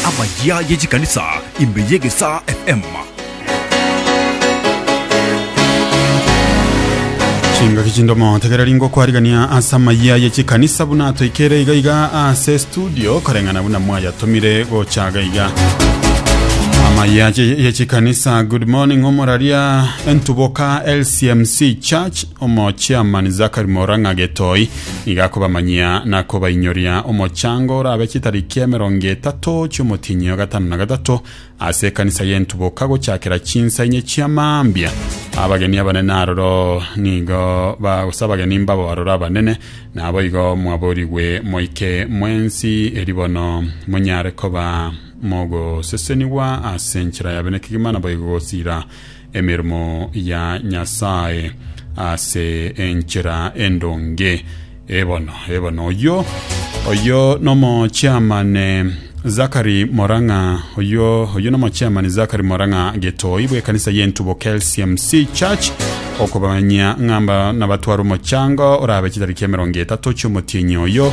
Amayia ye chikanisa ime y'egesaa FM. Chingaki chindomo tegereri ngokwarigania ase amayia ye chikanisa buna toikere iga iga ase studio koreng'ana buna mwayatomire gochaga iga amayia ye ye chikanisa good morning omoraria entuboka lcmc church omochiamani zakari morang'a getoi Nigo akobamanyia na kobainyoria omochango orabe chitariki emerongo etato chi'omotienyi o gatano na gatato ase ekanisa y'entuboka gochakera chinsa inye chia mambia. Abageni abanene aroro nigo ba gose abageni mbabo aroro abanene naboigo mwaborigwe moike mwensi eri bono monyare koba mogosesenigwa ase enchera yabe nekegima naboigo gosira emeremo ya Nyasae ase enchera endonge. Ebono, ebono, oyio, oyio nomo chiamane Zakari Morang'a, oyio, oyio nomo chiamane Zakari Morang'a Getoi bw'ekanisa y'entubo KLCMC Church okobamanyia ng'amba nabatwara omochango orabe chitariki emerongo etato chi'omotienyi oyo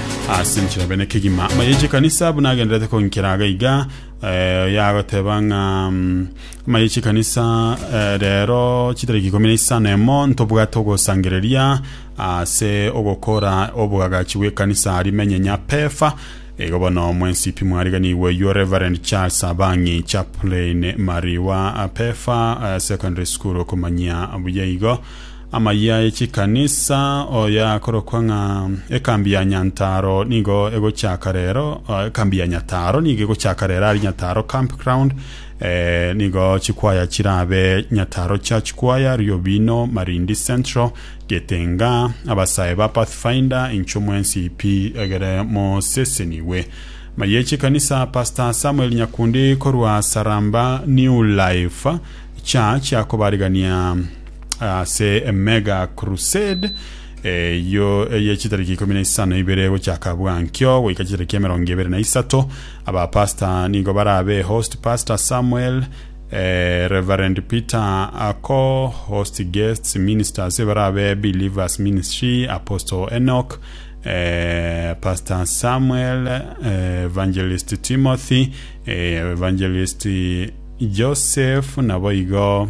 ase enchera bene kegima amayeche kanisa buna agenderete konkera aga iga eh, yagoteba ng'a mm, amayeche kanisa eh, rero chitariki ikomi na isano emo ntobwate ogosangereria ase ogokora obwagachi bw'ekanisa arimenye nyapefa igo bono mwensipi mwariganigwe yo reverend charles abangi chaplain mariwa pefa eh, secondary school okomanyia buya igo Amayia e chikanisa, oyo akorokwa ng'a Ekambi ya Nyantaro nigo egochaka rero, ah, Ekambi ya Nyataro nigo egochaka rero ari Nyataro Campground, eh, nigo chikwaya chirabe Nyataro Church Choir, Riobino, Marindi Central, Getenga, abasae ba Pathfinder, inchwe mwensi pi egere mosesenigwe. Amayia e chikanisa, Pastor Samuel Nyakundi korwa Saramba New Life Church akobarigania ase emega crusade eyo eye chitariki ikomi na isano ibere gochaka bwankio goika chitariki emerongo ebere na isato abapasta nigo barabe host pastor samuel eh, reverend peter ako host guests ministers barabe believers ministry apostle enoch eh, pastor samuel eh, evangelist timothy eh, evangelist joseph nabo igo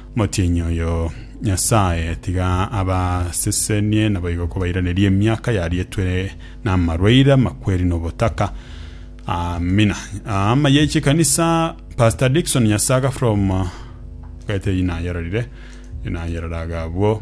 Motienyi oyo Nyasae tiga abasesenie, naboigo kobairanerie emiaka yarietwe namarwaire amakweri nobotaka. Amina. Ama ye chikanisa Pastor Dickson Nyasaga from Gaete inayerorire inayerora agabwo.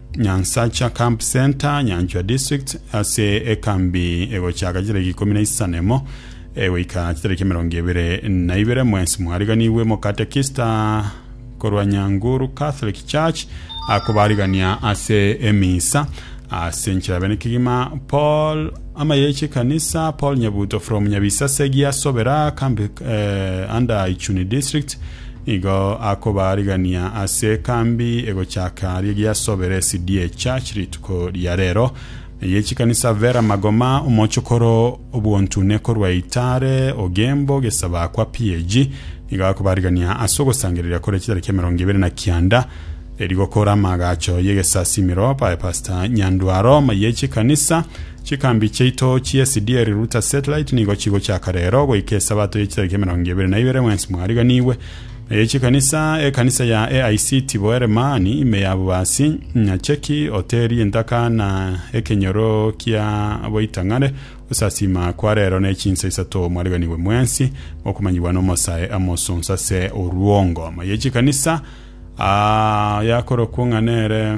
Nyansacha Camp Centre, Nyanchwa District, ase ekambi egochaka chitariki ikomi na isano emo egoika chitariki emerongo ebere na ibere mwensi mwariganigwe Mokatekista korwa Nyanguru Catholic Church akobarigania ase emisa ase enchera bene kegima Paul amayeche kanisa Paul Nyabuto from Nyabisase Giasobera kambi eh, under Ichuni District Igo akobaarigania ase ekambi egochaka aria giasobere Cde Church rituko ria rero. Eye chikanisa Vera Magoma, omochokoro obwontune korwa Itare, Ogembo, Gesaba kwa PAG, igo akobaarigania ase ogosangereria kore chitariki emerongo ibere na kianda eri gokora amagacho y'egesasimero bae Pastor Nyandwaro. Eye chikanisa Chikambi chiaito chi'esdieri Ruta Satellite nigo chigochaka rero goika Esabato ye chitariki emerongo ebere na ibere mwensi mwariganigwe, na ye chikanisa, ekanisa ya AIC Tiboere mani ime ya Bubasi, Nyacheki, Hoteri Entaka na Ekenyoro kia Boitang'are. Gosasiima kwa rero ne chinsa isato mwariganigwe mwensi mokomanyigwa n'omosae amosonso ase orwongo. Ime ye chikanisa ah, yakorokwo ng'a nere.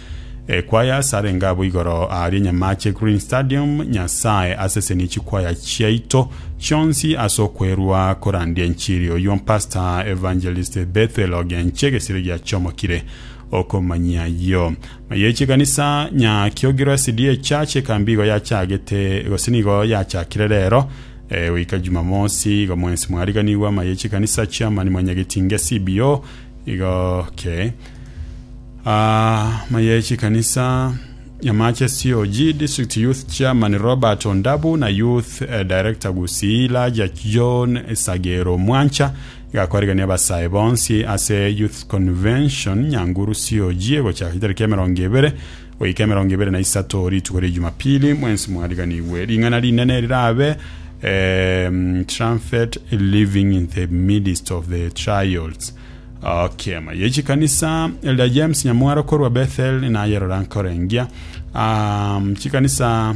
Ekwaya ase arenge abo igoro aaria enyamache eGreen Stadium, Nyasae asesenie chikwaya chiaito chionsi ase okwerua korandia enchiri. Oyio Pastor Evangelist Bethel Ogenche egesire giachomokire okomanyia ayio. Maye chikanisa nya Kiogiro SDA Church ekambi igo yachagete gose nigo yachakire rero eh, goika Jumamosi igo mwensi mwariganigwa. Maye chikanisa Chairman Mwanyagetinge CBO igo ke Amaye chikanisa ya Matches COG District Youth Chairman Robert Ondabu na Youth eh, Director Gusii Laja John Sagero Mwancha igakoregania abasae bonsi ase Youth Convention Nyanguru COG egochaka chitariki emerongo ebere goika emerongo ebere na isato rituko ria Jumapili mwensi mwariganigwe ring'ana rinene rirabe um, trumpet living in the midst of the trials Okema ye chikanisa Elder James Nyamwaro korwa Bethel nayerora nkorengia um, chikanisa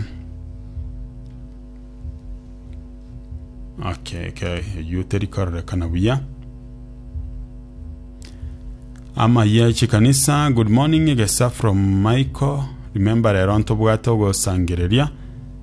okay, okay. eyio terikorerekana buya ama ye chikanisa good morning egesa from michael remember rero ntobwate ogosangereria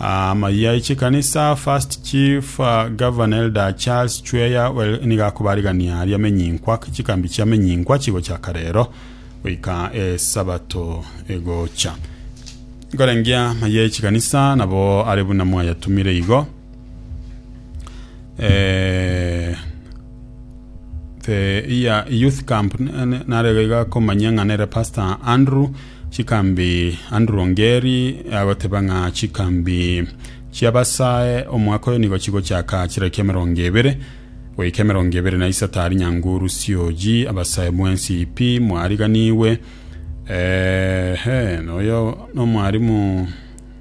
Aa amayia ye chikanisa First Chief Governor Elder Charles Chweya Well nigo akobarigania aria amenyinkwa chikambi chia amenyinkwa chigochaka rero goika esabato egocha. Nkorengia amayia ye chikanisa nabo are buna mwayatumire igo. Eh, the iya youth camp nare iga komanya ng'a nere Pastor Andrew Chikambi Andrew Ongeri agoteba ng'a chikambi chi'Abasae omwaka oyo nigo chigochaka chiraki emerongo ebere goika emerongo ebere na isato ari nyanguru sioji Abasae mwensi pi mwariganigwe ehe noyo nomwarimu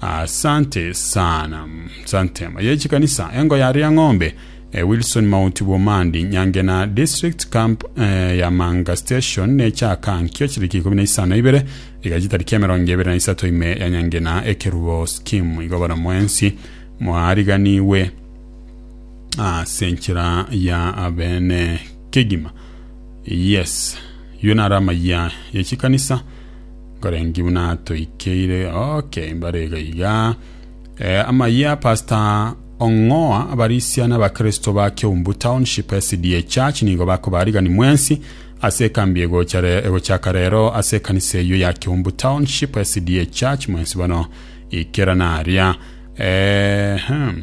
Asante sana. Sante. Ye chikanisa engo ya Riang'ombe, eh, Wilson Mount Bumandi, Nyangena District Camp eh, ya Manga Station ne chaka nkio chiriki ikumi na isano ibere iga chitariki emerongo ebere na isato ime ya Nyangena ekerubo scheme igo bono mwensi mwariganiwe ase enchera ya abene kegima. Yes. Yo nara amaya ye chikanisa Nkorenki buna toikeire oke mbare iga iga. Eh, amayia Pastor Ong'oa abarisia na abakristo ba Keumbu Township SDA Church nigo bakobarigani mwensi ase ekambi egocha re- egochaka rero ase ekanisa eyio ya Keumbu Township SDA Church mwensi bono ikera naria. Eh, hmm.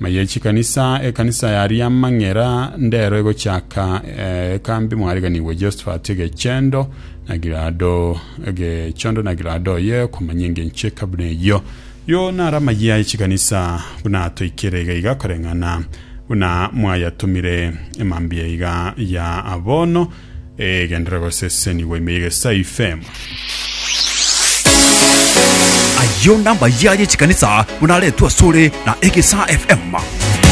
Ng'a ye chikanisa, ekanisa ya Riamang'era ndero egochaka eh, ekambi mwariganigwe Josephat egechendo na Gilado egechondo na Gilado ye komanya engencho ekabuna eyo yo nara amayia ye chikanisa buna toikere iga iga koreng'ana buna mwayatumire emambia iga ya abono Egenderera gosesenigwa ime y'egesae ifema. Ayio nambayaye chikanisa buna aretwe asore na egesa FM.